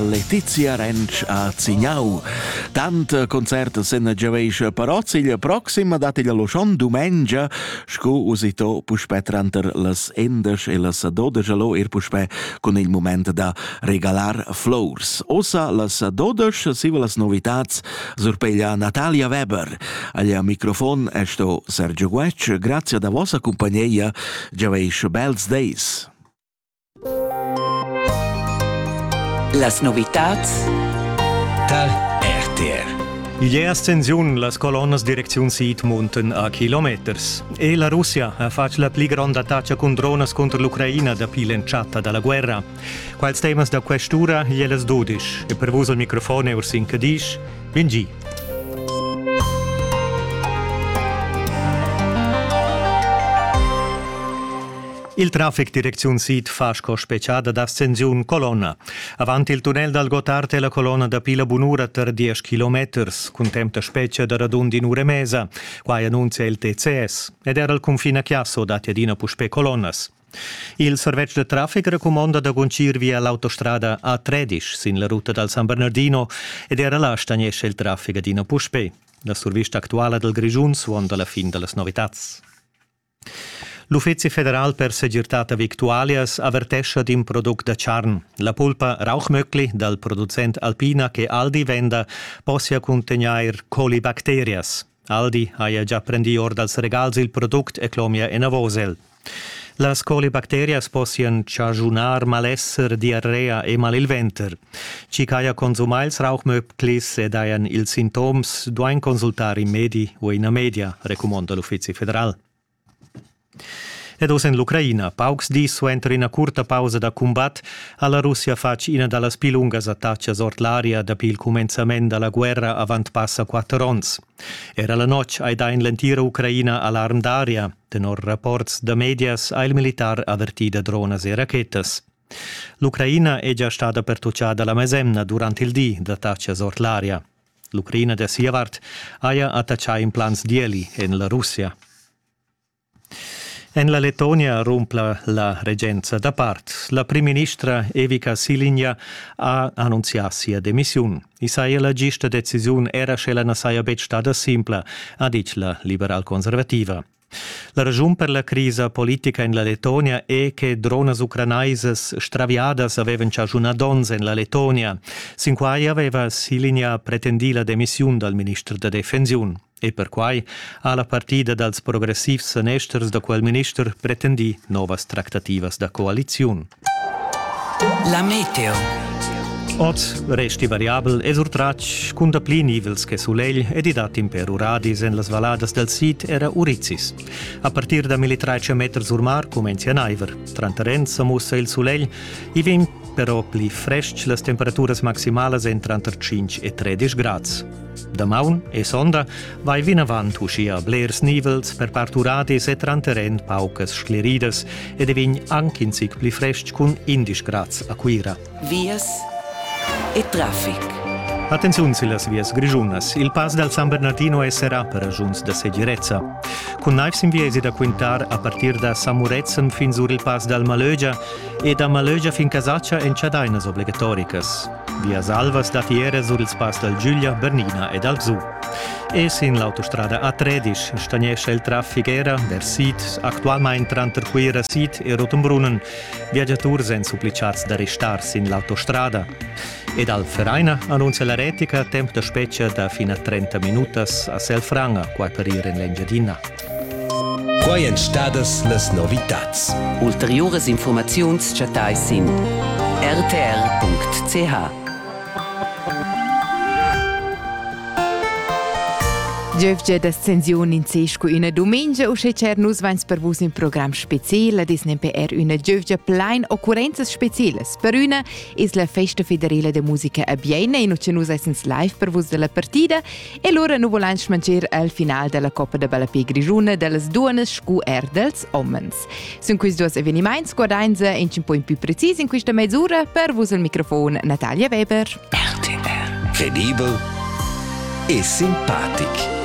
Letizia Rensch a Zignau. Tant concert sen giaveisch parot il proxim dat il loschon dumengia, sco usito puspè tranter las endesch e las dodesch allo er puspè con il moment da regalar flors. Osa las dodesch siva las novitats surpeglia Natalia Weber. Aglia microfon è sto Sergio Guec, grazie da vossa compagnia, giaveisch bels days. Las novitads tar RTR. Igl è ascensiun las colonnas direcziun sid munten a kilometers. E la Russia ha fatg la pli gronda attacca cun dronas contro l'Ucraina dapi l'entschatta da la guerra. Quals temas da quest'ura e las dudisch. E per vus al microfon è Ursin Cadisch. Bin gi. Il traffic direcziun sid fa sco speciada d'ascensiun colonna. Avant il tunnel dal Gottard è la colonna dapi la bunura tar 10 kilometers, contempla spetga da radund in ura e mesa. Quai annunzia il TCS. Ed era al cunfin a Chiasso datti adina puspè colonnas. Il servetsch da traffic recumonda da guncir via l'autostrada A13 sin la ruta dal San Bernardino ed era là stagnescha il traffic adina puspè. La survista actuala dal Grischun suonda la fin da las novitads. L'Uffezi federal per segirtad da victualias avertescha d'in product da charn. La pulpa Rauchmöckli dal producent Alpina che Aldi venda possia cuntegnair colibacterias. Aldi haja già prendì or dals regals il product e clomia enavos el. Las colibacterias possian chaschunar malesser, diarrea e mal il venter. Chi haja consumà ils rauchmöblis ed hajan ils sintoms duain consultar in medi u ina media, recumonda l'Uffizi federal. Ed oz en l'Ucraina. Paucs dis suenter ina curta pausa da cumbat ha la Russia fatg ina da las pli lungas attatgas ord l'aria dapi il cumenzament da la guerra avant passa quatter onns. Era la notg hai dà en l'entira Ucraina alarm d'aria. Tenor rapports da medias ha il militar avertì da dronas e rachetas. L'Ucraina è gia stada pertutgada la mesemna durant il di d'attatgas ord l'aria. L'Ucraina da sia vart haja attachà implants d'ieli en la Russia. En la Letonia rumpla la regenza da part. La primministra Evika Silinja ha annunzià sia demissiun. I saja la gista decisiun era sche la na saja betg stada simpla, ha ditg la liberal-conservativa. La raschun per la crisa politica en la Lettonia è che dronas ucranaisas straviadas avevan chaschunà donns en la Lettonia. Sin quai aveva Silinja pretendì la demissiun dal minister da defensiun. E perquai ha la partida dals progressivs sanesters da quel minister pretendì novas tractativas da coaliziun. La meteo. Ot resti variabel e surtratg cun dapli nivels che sulegl ed i dat in per uradis en las valladas dal sid era Urizis. A partir da 1300 meter sur mar cumenza naiver. Tranter Renza mussa il sulegl. I vegn però pli frestg las temperaturas maximalas en tranter 5 e 13 grads. Damaun e sonda vai vinavant uschia blers nivels per parturadis e tranter en paucas scleridas ed è vegn anc in zic pli frestg cun 11 grads a Cuira. Vias e traffic. Attenziun sillas vias grischunas. Il pass dal San Bernardino è serrà per ragiuns da segirezza. Cun naiv sin viesi da quintar a partir da Samuretzen fin sur il pass dal Malögia e da Malögia fin Casaccia èn chadainas obligatoricas. Vias alvas da fiera sur ils pass dal Giulia, Bernina e dal Zu. E sin l'autostrada A13 stagnescha il traffic era vers sid, actualmain tranter Cuira sid e Rotenbrunnen. Viagiaturs èn supplicats da restar sin l'autostrada. Ed al Vereina annunzia la retica temp da spetga da fin a 30 minutas a Selfranga, quai per ir en l'Engiadina. Quai èn stadas las novitads. Ulteriuras infurmaziuns chattais sin rtr.ch. Giövgia d'ascensiun in se scu üna dumingia uschè cher nus vains per vus in program speziel ad es nemper üna giövgia plain occurrenzas specielas. Per üna es la festa federela da musica a Biena in ucha nus esens live per vus da la partida E lura nu vulain schmancher al final della Coppa da ballapè grischuna dellas duonnas scu er dels homens. Sun quist duos evenimaints guardainsa in un po in più precis in quista mezz'ura per vus al microfon Natalia Weber. RTR Credibel e simpatic.